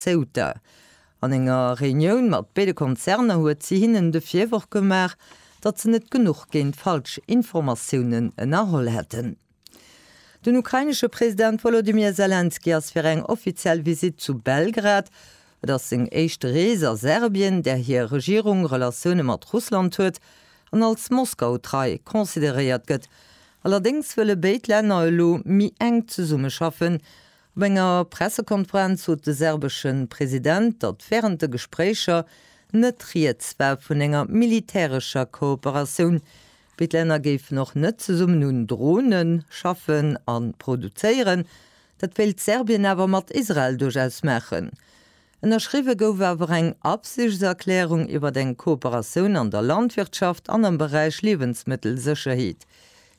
Ceuta. An enger Reunioun mat béide Konzerner huet si hinnen de Virworf gemaach, datt se net genuch géint falsch Informatiounen ënnerholl hätten. Den ukrainesche President Wolodymyr Selenskyj ass fir eng offiziell Visitt zu Belgrad. Et ass seng éischt Rees a Serbien, där hir Regierung Relatioune mat Russland huet an als Moskau trei consideréiert gëtt. Allerdéngs wëlle béid Länner elo méi enk zesummeschaffen. Op enger Pressekonferenz sot de serbesche President, datt wärend de Gespréicher net rieds war vun enger militärescher Kooperatioun, wéi d'Länner géifen och net zesummen un Drone schaffen a produzéieren. Dat wéilt Serbien awer mat Israel duerchaus maachen. Ënnerschriwwe gouf awer eng Absichtserklärung iwwert eng Kooperatioun an der Landwirtschaft an am Beräich Liewensmëttelsécherheet.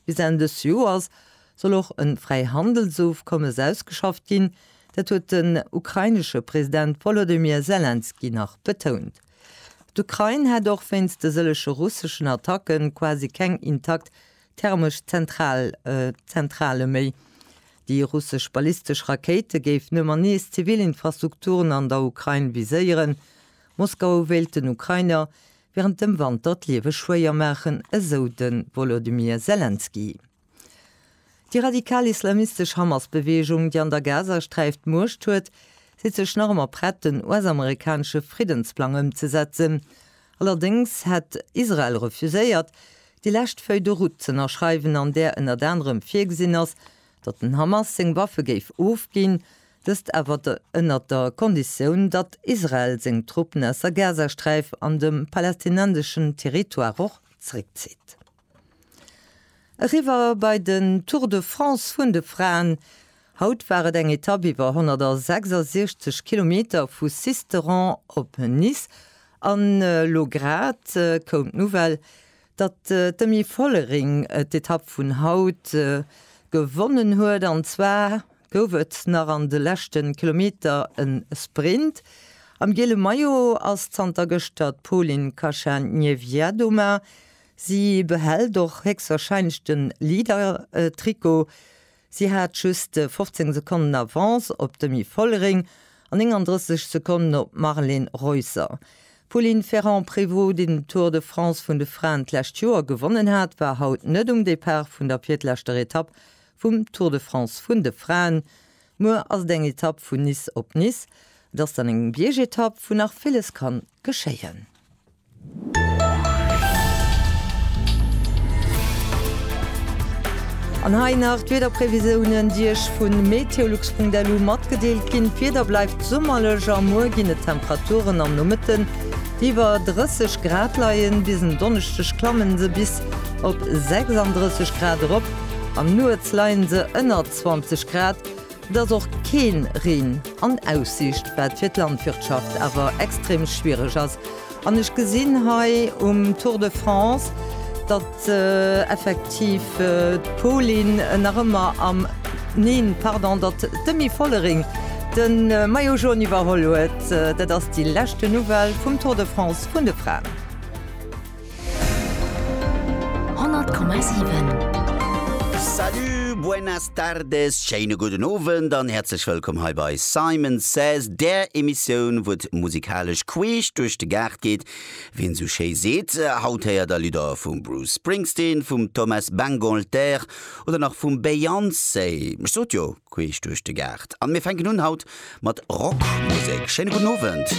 Bis Enn dës Joers soll och e Fräihandelsofkommes ausgeschafft ginn, dat huet den ukrainesche President Wolodymyr Selenskyj nach betount. D'Ukrain hätt och wéinst de sëllege russeschen Attacke quasi keng intakt Thermesch Zentral, Zentrale méi. Déi russesch ballistesch Rakéite géifen ëmmer nees zivil Infrastrukturen an der Ukrain viséieren. Moskau wéilt den Ukrainer wärend dem Wanter d'Liewe schwéier maachen, esou de Wolodymyr Selenskyj. Déi radikal islamistesch Hamas-Beweegung, déi an der Gazasträif d'Muecht huet, seet sech nach ëmmer prett, den US-amerikanesche Friddensplang ëmzesetzen. Allerdéngs hätt Israel refuséiert, déi lescht Feuille de route z'ënnerschreiwen an där ënnert anerem virgesinn ass, datt den Hamas seng Waffe géif ofginn, dëst awer ënnert der Konditioun, datt Israel seng Truppen aus der Gazasträif an de palästinenseschen Territoire och zréckzitt. Eriwwer bei den Tour de France vun de Fraen. Haut war et eng Etapp iwwer 166 Kilometer vu Sisteron op Nice an elo grad koum d'Nouvelle, datt d'Demi Vollering d'Etapp vun haut gewonnen huet. An zwar gouf et nach an de leschte Kilometer e Sprint. Am giele Maillot ass zanter gëschter d'Polin Kacha-Niewiadoma. Si behält och héchstwarscheinlech de Leader-Trikot. Si hat just 15 Sekonnen Avance op d'Demi Vollering an 39 Sekonnen op d'Marlene Reusser. D'Pauline Ferrand-Prévot, déi den Tour de France vun de Fraen d'lescht Joer gewonnen hat, war haut net um Depart vun der virtleschter Etapp vum Tour de France vun de Fraen. Muer ass et eng Etapp vun Nice op Nice. Et ass dann eng Biergetapp, wou nach villes kann geschéien. An hei nach d'Wiederprevisioune, déi Iech vu meteolux.lu matgedeelt ginn. D'Wieder bleift summerlech a muer ginn et Temperaturen am Nomëtten, déi iwwer 30 Grad leien. Bis en Donneschdeg klammen se bis op 36 Grad erop, an nuets leien se ënner 20 Grad. Et ass och keen Reen an Aussicht, wat fir d'Landwirtschaft awer extrem schwiereg ass. An ech gesinn hei um Tour de France, datt effektiv d'Pauline nach ëmmer am, neen, pardon, datt d'Demi Vollering de Maillot Jaune iwwerholl huet. Dat ass déi leschte Nouvelle vum Tour de France vun de Fraen. 100,7 Salut, buenas tardes, schéine gudden Owend an häerzlech wëllkomm hei bei Simon Says, där Emissioun, wou et musikalesch queesch duerch de Gaart geet, wéi een esou schéi seet. Haut héiert der Lidder vum Bruce Springsteen, vum Thomas Bangalter oder nach vum Beyoncé. Ech sot jo, queesch duerch de Gaart. An mir fänken un haut mat Rockmusek. Schéine gudden Owend.